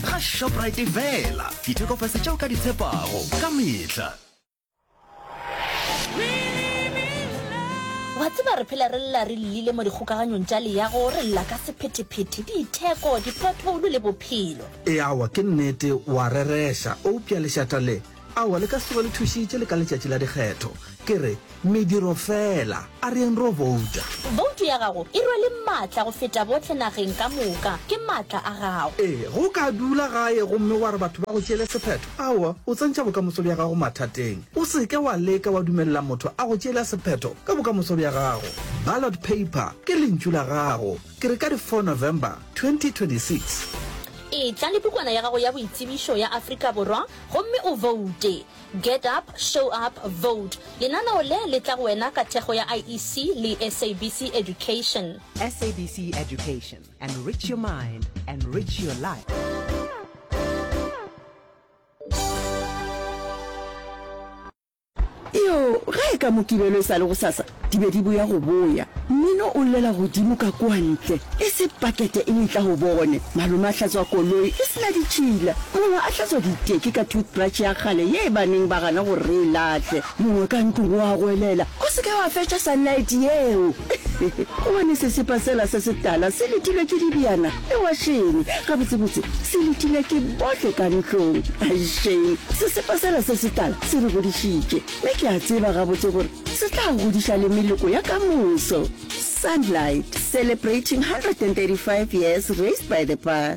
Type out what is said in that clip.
ga Shoprite fela. Ditheko fase tšeo ka di tshepago ka mehla. Wa tseba re phela re lla re llile mo dikgokaganyong tša leago, re lla ka sephetephete, ditheko, dipothoulo le bophelo. Eawa ke nnete, wa rereša. Eupša lešata le. Aowa, le ka se tsoge le thušitše le ka letšatši la dikgetho. Ke re, mediro feela. A re yeng ro bouta. Boutu ya gago e rwele maatla go feta bohle nageng ka moka. Ke maatla a gago. Ee, ge o ka dula gae gomme wa re batho ba go tšeele sephetho, aowa, o tsentšha bokamoso bja gago mathateng. O se ke wa leka wa dumelela motho a go tšeela sephetho ka bokamoso bja gago. Ballot paper ke lentšu la gago. Ke re ka di four November 2026. Etla le pukwana ya gago ya boitsebišo ya Afrika Borwa gomme o voute. Get Up, Show Up, Vote. Lenaneo le le tla go wena ka thekgo ya IEC le SABC Education. SABC Education, enrich your mind, enrich your life. Iyo, ge e ka Mokibelo e sa le gosasa, di be di boya go boya. Mmino o llela godimo ka kua ntle. E se pakete e letla go bone. Malome a hlatswa koloi e se na ditšhila. Mongwe a hlatswa diteki ka toothbrush ya kgale ye e baneng ba gana gore re e lahle. Mongwe ka ntlong o a goelela, O se ke wa fetša sunlight yeo! Gobane sesepa sela se setala se letilwe ke dibjana Ewa Shane, gabotsebotse se letile ke bohle ka ntlong. Ai Shane, sesepa sela se setala se re godišitše, mme ke a tseba gabotse gore se tla godiša le meloko ya ka moso. Sunlight, celebrating 135 years raised by the pa.